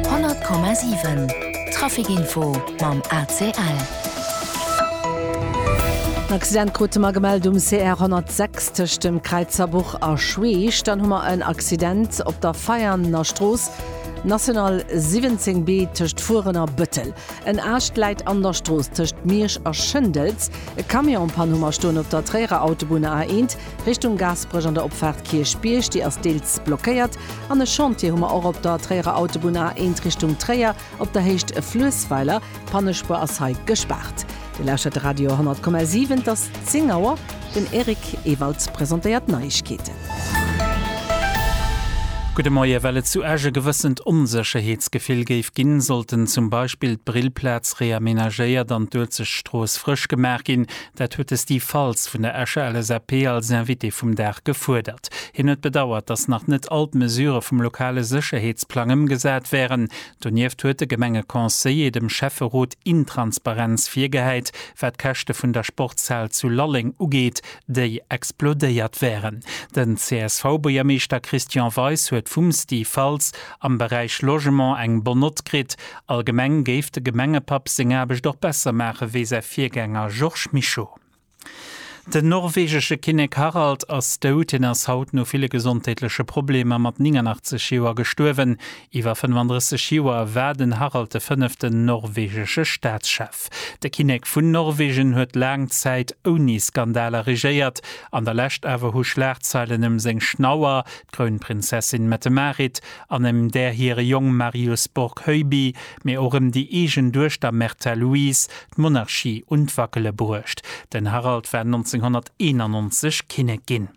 100,7 Trafic Info mam ACL. En Accident krute mer gemellt um CR 106 tëscht dem Kräizerbuch a Schweech. Dann hu mer en Accident op der Veianer Strooss, National 17 B, tëscht Furen a Bëttel. En Aascht läit an der Strooss tëscht Miersch a Schëndels. E Camion en Panne hu mer stoen op der Tréierer Autobunn, A1. Richtung Gaasperech an der Opfaart Kierchbierg, déi ass deels blockéiert. An e Chantier hu mer och op der Tréierer Autobunn A1 Richtung Tréier, op der Héicht Fluessweiler. D'Pannespuer ass hei gespaart. Dir lauschtert de Radio 100,7. Et ass 10 Auer. Den Eric Ewald presentéiert d'Neiegkeeten. Gudde Moie. Well et zu Esch e gewëssent Onsécherheetsgefill géif ginn, sollten zum Beispill d'Brillplaz reamenagéiert an d'Uelzechtstrooss frësch gemaach ginn. Dat huet de Steve Faltz vun der Escher LSAP als Invité vum Dag gefuerdert. Hien huet bedauert, datt nach net all d'Mesurë vum lokale Sécherheetsplang ëmgesat wären. Donieft huet de Gemengeconseiller dem Schäfferot Intransparenz virgehäit, wat d'Käschte vun der Sportshal zu Lalleng ugeet, déi explodéiert wären. Den CSV-Buergermeeschter Christian Weis huet vum Steve Faltz am Beräich Logement eng Bonne Note kritt Allgemeng géif de Gemengepapp seng Aarbecht och besser maache wéi säi Virgänger Georges Mischo. Den norwegesche Kinnek Harald ass dout. Hien ass haut no ville gesondheetleche Problemer mat 89 Joer gestuerwen. Iwwer 35 Joer war den Harald de fënneften norwegesche Staatschef. De Kinnek vun Norwegen huet laang Zäit ouni Skandaler regéiert. An der Lescht awer hu Schlagzeilen ëm seng Schnauer, d'Krounprinzessin Mette-Marit, an ëm där hire Jong Marius Borg-Heuby, mee och ëm déi eegen Duechter Märtha Louise, d'Monarchie un d'Wackele bruecht. Den Harald war 1991 Kinnek ginn.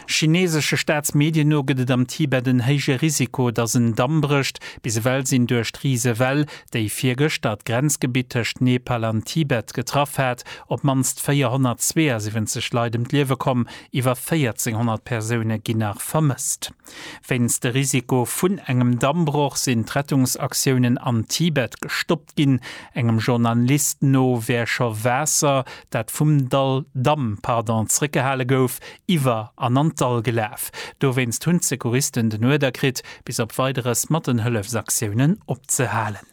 Chineesesche Staatsmedien no gëtt et am Tibet en héije Risiko, datt en Damm brécht. Bis ewell sinn duerch d'Risewell, déi virgëschter d'Grenzgebitt tëscht Nepal an Tibet getraff hat, op d'mannst 472 Leit ëm d'Liewe komm. Iwwer 1.400 Persoune ginn nach vermësst. Wéinst de Risiko vun engem Dammbroch sinn d'Rettungsaktiounen am Tibet gestoppt ginn. Engem Journalist no wär scho Waasser, dat vum Dall, Damm, pardon, zréckgehale gouf, iwwer an an d'Dall gelaf. Dowéinst hunn d'Secouristen den Uerder kritt, bis op Weideres mat den Hëllefsaktiounen opzehalen.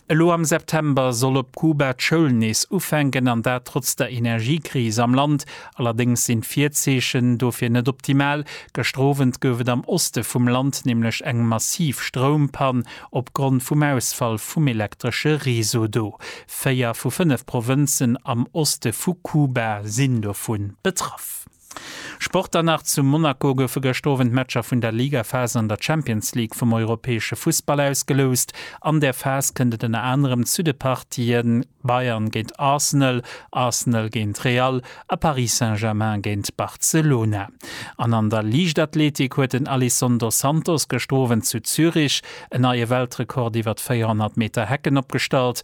Elo am September soll op Kuba d'Schoul nees ufänken, an dat trotz der Energiekris am Land. Allerdéngs sinn d'Virzeechen dofir net optimal. Gëschter Owend gouf et am Oste vum Land nämlech eng massiv Stroumpann opgrond vum Ausfall vum elektresche Réseau do. Véier vu fënnef Provënzen am Oste vu Kuba sinn dovu betraff. Sport dann nach, Zu Monaco goufe gëschter Owend d'Matcher vun der Ligaphas an der Champions League vum europäesche Fussball ausgeloust. An där Phas kënnt et ënner anerem zu de Partie Bayern géint Arsenal, Arsenal géint Real a Paris Saint-Germain géint Barcelona. An an der Liichtathletik huet den Alisson dos Santos gëschter Owend zu Zürich en neie Weltrekord iwwer 400 Meter Hecken opgestallt.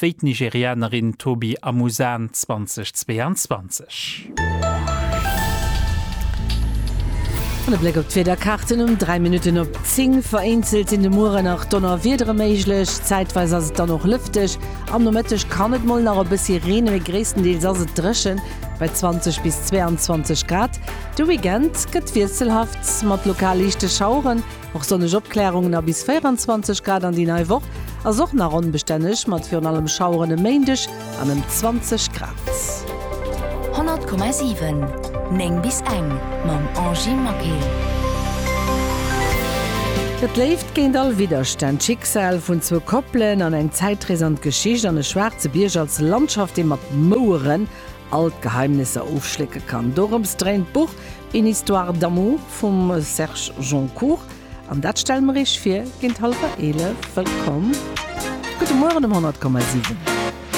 wéi d'Nigerianerin Tobi Amusan 2022. An e Bléck op d'Wiederkaarten um 3 Minutten op 10, Vereenzelt sinn de Muere nach Donnerwiedere méiglech, zäitweis ass et dann och lëfteg. Am Nomëtteg kann et mol nach e bëssi reenen, mee gréisstendeels ass et dréchen bei 20 bis 22 Grad. De Weekend gëtt wiesselhaft mat lokal liichte Schaueren. Och sonneg Opklärungen a bis 24 Grad an déi nei Woch ass och nach onbestänneg, mat virun allem Schaueren e Méindeg an ëm 20 Grad. 100,7 9 bis eng mam Angie Maquet. Et léift géint all Widderstänn, d'Schicksal vun zwou Koppelen an eng Zäitrees an d'Geschicht an e schwaarze Bierg als Landschaft, dee mat Moueren all d'Geheimnisser ofschlécke kann. Dorëms dréint d'Buch Une histoire d'amour vum Serge Joncour, an dat stelle mer Iech vir géint hallwer 11. Wëllkomm, gudde Mueren um 100,7.